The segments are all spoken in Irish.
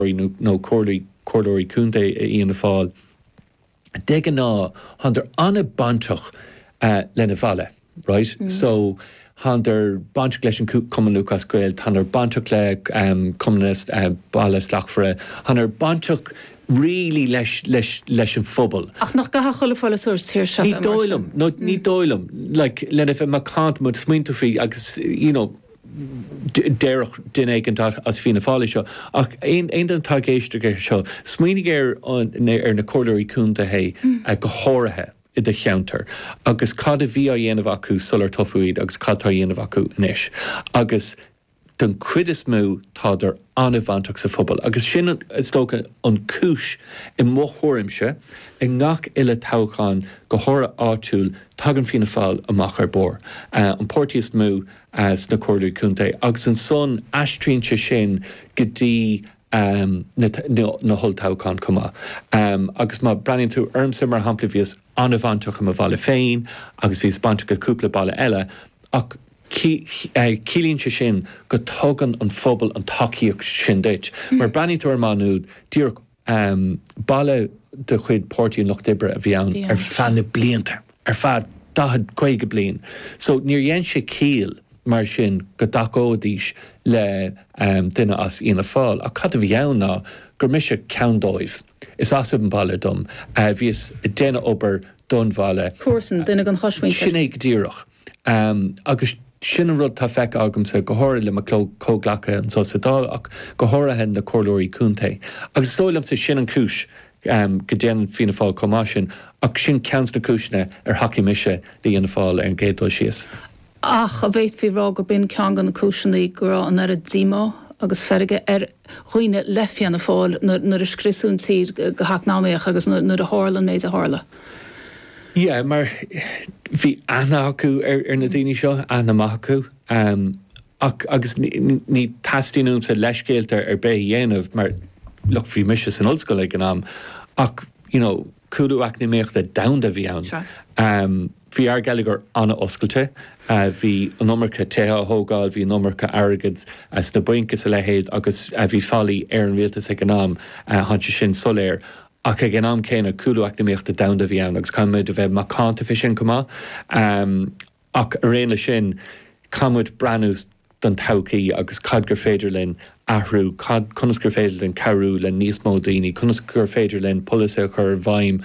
nó comhairleoirí contae i Fhianna Fáil, de ghnáth, thándar an-bainteach lena mbaile, right? So, thándar bainteach leis an Cumann Lúthchleas Gael, thándar bainteach le Cumann na mBailte Slachtmhara, thándar bainteach really leis, leis, leis an phobal. Ach nach gcaithfeadh chuile pholaiteoir sa tír seo a bheith mar sin? Ní dóigh liom, nó ní dóigh liom, like, lena bheith macánta, má smaoiníonn tú faoi agus, you know, déarfadh duine éigin as Fianna Fáil é seo, ach aon duine atá ag éisteacht leis seo, smaoinigh ar na Comhairleoirí Contae go háirithe i do cheantar agus cad a bhí á dhéanamh acu sular toghadh iad agus cad atá á dhéanamh acu anois agus don chuid is mó tádar an-bhainteach sa phobal agus sin is dócha an chúis, i mo thuairimse, i ngach uile toghchán, go háirithe áitiúil, tagann Fianna Fáil amach ar barr, an páirtí is mó. sna Comhairlí Contae agus ansan aistríonn sé sin go dtí na holltoghcháin chomh maith. Agus má breathnaíonn tú ormsa mar shampla, bhíos an-bhainteach i mo bhaile féin agus bhíos bainteach i cúpla baile eile ach ciallaíonn sé sin go dtugann an phobal an tacaíocht sin duit mar breathnaíonn tú ar Mhaigh Nuad díreach Um baile de chuid Páirtí an Lucht Oibre a bhí ann ar feadh na blianta, ar feadh daichead, caoga bliain, so níor dhein sé ciall mar sin go dtacóidís le duine as Fhianna Fáil. Ach cad a bhí ann ná gur mise ceann dóibh. Is as an bhaile dom. Bhíos ag déanamh obair don bhaile. Comharsan, duine den chosmhuintir. Sin é go díreach. agus sin an rud atá feicthe agamsa go háirid le mo chomhghleacaithe anseo sa Dáil ach go háirithe na Comhairleoirí Contae agus is dóigh liomsa sin an chúis go déanann Fianna Fáil chomh maith sin ach sin ceann de na cúiseanna ar thacaigh mise le Fhianna Fáil ar an gcéad dul síos. Ach a bhféadfaí rá gur b'in ceann de na cúiseanna go raibh an oiread díomá agus feirge ar dhaoine le Fianna Fáil nuair a scriosadh an tír go heacnamaíoch agus nuair a tharla an méid a tharla. Yeah, mar bhí aithne acu ar na daoine seo, aithne mhaith acu. Ach, agus ní theastaíonn uaimse leithscéalta ar bith a dhéanamh mar, look, bhí mise san ollscoil ag an am ach, you know, Cúlú eacnamaíochta domhanda a bhí ann. Bhí ár geilleagar an-oscailte. Bhí an iomarca tithe á thógáil, bhí an iomarca airgid sna bainc is a leithéid agus bhí faillí ar an rialtas ag an am. Tá sé sin soiléir. Ach ag an am céanna, cúlú eacnamaíochta domhanda a bhí ann agus caithfimid a bheith macánta fé sin chomh maith. Ach araon leis sin, caithfimid breathnú don todhchaí agus cad gur féidir linn athrú, cad, conas gur féidir linn cabhrú le níos mó daoine, conas gur féidir linn polasaithe a chur i bhfeidhm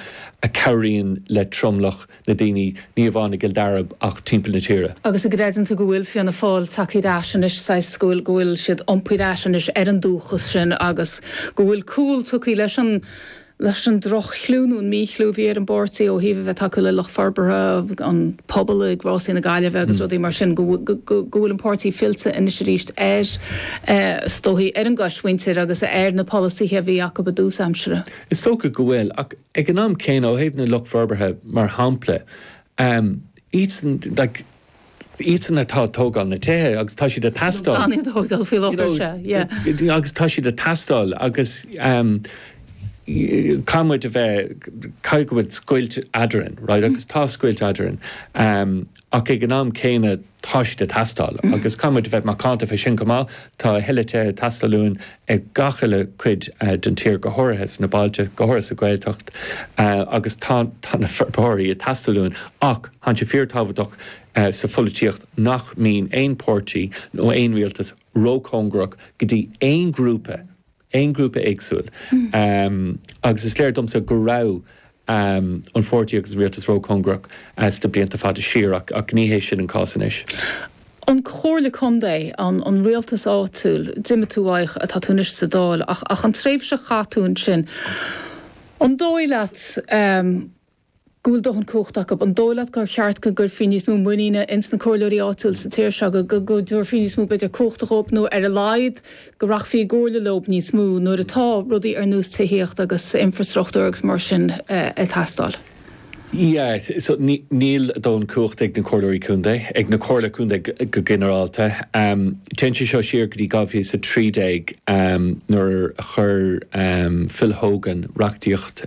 a cabhraíonn le tromlach na daoine, ní amháin i gCill Dara ach timpeall na tíre. Agus an gcreideann tú go bhfuil Fianna Fáil tagtha ar ais anois, saghas, go bhfuil, go bhfuil siad iompaithe ar ais anois ar an dúchas sin agus go bhfuil cúl tugtha leis an leis an droch-chliú nó an mí-chliú a bhí ar an bpáirtí ó thaobh a bheith ag tacú le lucht forbartha an phubaill ag Rásaí na Gaillimhe agus rudaí mar sin, go bhfuil an páirtí fillte anois arís ar, is dóichí, ar an gcoismhuintir agus ar na polasaithe a bhí acu i dtús aimsire. Is dócha go bhfuil, ach ag an am céanna, ó thaobh na lucht forbartha, mar shampla, iadsan, like, iadsan atá ag tógáil na tithe agus tá siad ag teastáil. Gan iad a thógáil faoi láthair, sea, yeah. Agus tá siad ag teastáil agus caithfidh muid a bheith, caithfidh go mbeidh scoilt eadrainn, right, agus tá scoilt eadrainn ach ag an am céanna tá siad ag teastáil agus caithfidh muid a bheith macánta fé sin chomh maith. Tá a thuilleadh tithe ag teastáil uainn i gach uile cuid den tír, go háirithe sna bailte, go háirithe sa Ghaeltacht agus tá na forbróirí ag teastáil uainn ach tá sé fíor-tábhachtach sa pholaitíocht nach mbíonn aon páirtí nó aon rialtas ró-chóngarach go dtí aon ghrúpa, aon ghrúpa éagsúil agus is léir domsa go raibh um an pháirtí agus an rialtas ró-chóngarach sna blianta fada siar ach ní hé sin an cás anois. An Chomhairle Contae, an an rialtas áitiúil, d'imigh tú uaidh, tá tú anois sa Dáil ach ach an tréimhse a chaith tú ansin, an dóigh leat um go bhfuil dóthain cumhacht acu, an dóigh leat gur cheart go gcuirfí níos mó muiníne ins na comhairleoirí áitiúil sa tír seo go go gcuirfí níos mó b'fhéidir cumhachta dhóibh nó ar a laghad, go rachfaí i gcomhairle leo níos mó nuair atá rudaí ar nós tithíocht agus infreastruchtúr agus mar sin ag teastáil. Yeah, so níl dóthain cumhacht ag na Comhairleoirí Contae, ag na Comhairle Contae go ginearálta. Téann sé seo siar go dtí 2013 nuair a chuir Phil Hogan reachtaíocht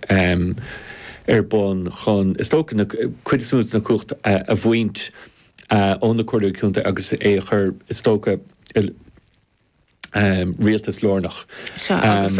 ar bun chun, is dócha, cuid is mó den chumhacht a bhaint. ó na Comhairleoirí Contae agus é a chur, is dócha, i rialtas lárnach. Sea, agus.